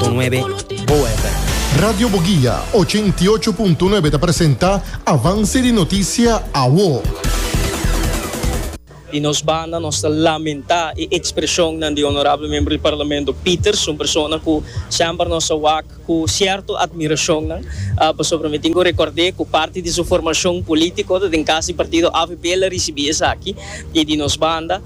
Con nuebe OFM. Radio Boguia, ochenta i ocho punto nuebe ta presenta Avance di Noticia Awo. Di nos banda nos ta lamenta e expresionnan di Honorable Membro di Parlamento Peters, un persona cu semper nos a wak cu cierto admiracionnan, pasobra mi tin cu recorde cu parti di su formacion politico ta den cas di partido avp el a ricibi esaki y di nos banda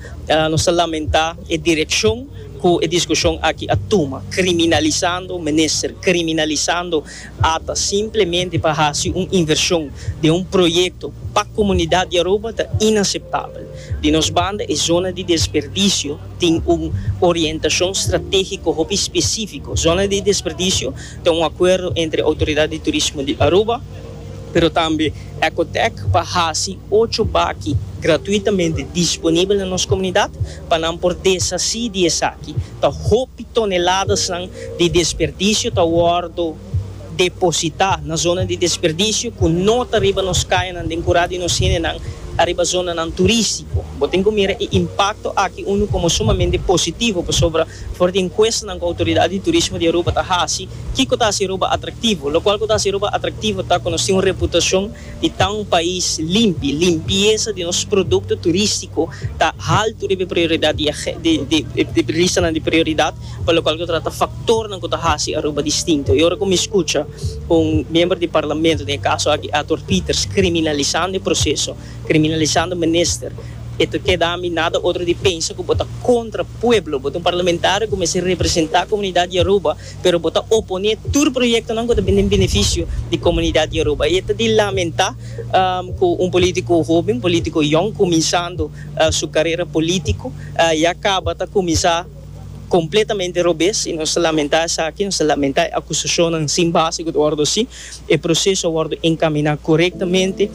nos ta lamenta e direccion. Cu e discusion aki a tuma, criminalisando minister, criminalisando ata simplemente pa haci un inversion den un proyecto pa comunidad di Aruba ta inaceptabel. Di nos banda e zona di desperdicio tin un orientacion strategico hopi specifico. Zona di desperdicio ta un acuerdo entre Autoridad di Turismo di Aruba, pero tambe Ecotec pa haci ocho baki gratuitamente disponibel na nos comunidad, Pa nan por deshací di esaki, ta hopi toneladasnan di desperdisio ta wòrdu depositá na zona di desperdisio ku no ta riba nos kayanan den kurá di nos hendenan ariba zonanan turístiko. Bo tin ku mira e impakto aki unu komo sumamente positivo pasobra for di enkuestanan ku Outoridat di Turismo di Aruba ta hasi, kiko ta hasi Aruba atraktivo? Lokual ku ta hasi Aruba atraktivo ta ku nos tin un reputashon di ta un pais limpi. Limpiesa di nos produkto turistiko ta haltu riba e prioridat di e listanan di prioridat pa lokual ku ta trata faktornan ku ta hasi Aruba distinto. E ora ku mi skucha ku un miembro di parlamento, den e kaso aki Arthur Peters, kriminalisando e proseso, kriminalisando minister, e ta keda mi nada otro di pensa ku bo ta kontra pueblo. Bo ta un parlamentario ku mester representá komunidat di Aruba. pero bo ta oponé tur proyektonan ku ta bin den benefisio di komunidat Yoruba. I e ta di lamentá ku un polítiko hoben, polítiko yòn, kuminsando su karera polítiko, ya kaba ta kuminsá kompletamente robes. I nos ta lamentá esaki, nos ta lamentá e akusashonnan sin base ku ta wòrdu hasi. E proseso a wòrdu enkaminá korektamente.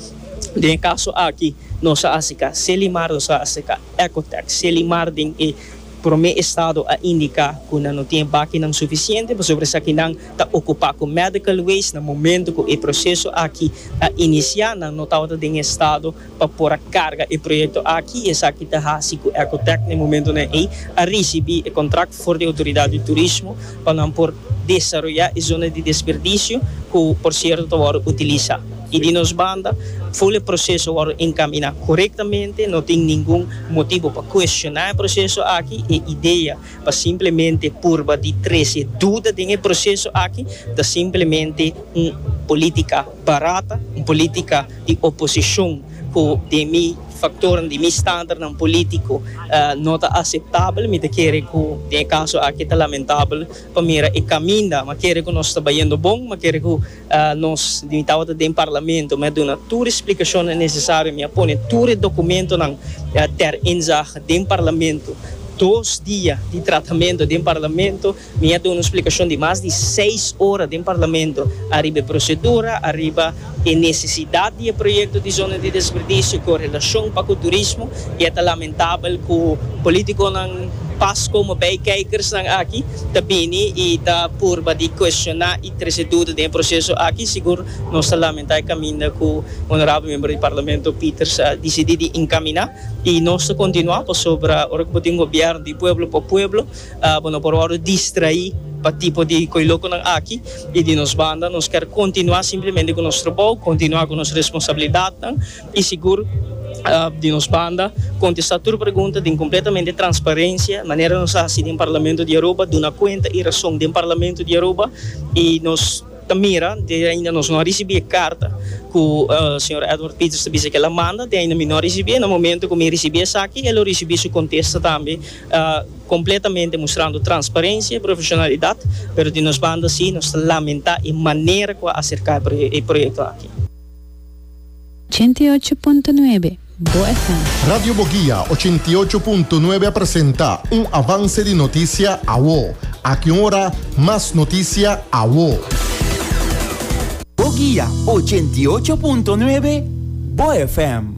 Den e kaso aki nos a hasi ka Selimar, nos a hasi ka Ecotex. Selimar den e. Prome estado a indica cu nan no tin bakinan suficiente pasobra esaki nan ta ocupa cu medical waste. Na momento cu e proceso aki a inicia nan no tabata den estado pa por a carga e proyecto aki y esaki ta haci cu Ecotec na e momentonan ey a ricibi e contract for di Autoridad di Turismo pa nan por desaroyá e zona di desperdisio ku por sierto ta wòrdu utilisá i di nos banda ful e proseso wòrdu enkaminá korektamente, no tin ningun motibu pa kuestioná e proseso aki. E idea pa simplemente purba di trese duda den e proseso aki ta simplemente un polítika barata, un polítika. di oposicion cu den mi factornan di mi standaardnan politico no ta aceptabel. Mi ta kere cu den e caso aki ta lamentabel pa mira e caminda. Mi a kere cu nos ta bayendo bon, mi a kere cu nos, mi tabata den Parlamento, mi a duna tur e splicacionnan necesario, mi a pone tur e documentonan ter inzage den Parlamento, dos dia di tratamento den Parlamento. Mi a duna un splikashon di mas di seis ora den Parlamento ariba e prosedura, ariba e nesesidat di e proyekto di zona di desperdisio ku relashon pa ku turismo i a ta lamentabel ku politikonan pas komo bei keikersnan aki ta bini i ta purba di kuestioná i trese duda den e proseso aki. Sigur nos ta lamentá e kaminda ku Onorabel Membro di Parlamento Peters a disidí di inkaminá i nos ta kontinuá pasobra ora ku bo tin un gobièrnu di pueblo pa pueblo Bo no por wòrdu distraí pa tipo di koilokonan aki. I di nos banda, nos ker kontinuá simplemente ku nos trabou, kontinuá ku nos responsabilidatnan i sigur di nos banda kontestá tur pregunta den kompletamente transparensia, manera nos a hasi den Parlamento di Aruba, duna kuenta i rason den Parlamento di Aruba. I nos ta mira, te ainda nos no a risibí e karta ku señor Edward Peters ta bisa ku el a manda, te ainda mi no a risibí. Na momentu ku mi risibí esaki, e lo risibí su kontesta tambe. Completamente mustrando transparencia y profesionalidad, pero di nos banda si nos ta lamenta e manera cu a acerca e proyecto aki. Ochenta i ocho punto nuebe Bo FM. Radio Boguia ochenta i ocho punto nuebe a presenta un avance di noticia awo. Aki un ora mas noticia awo. Boguia ochenta i ocho punto nuebe Bo FM.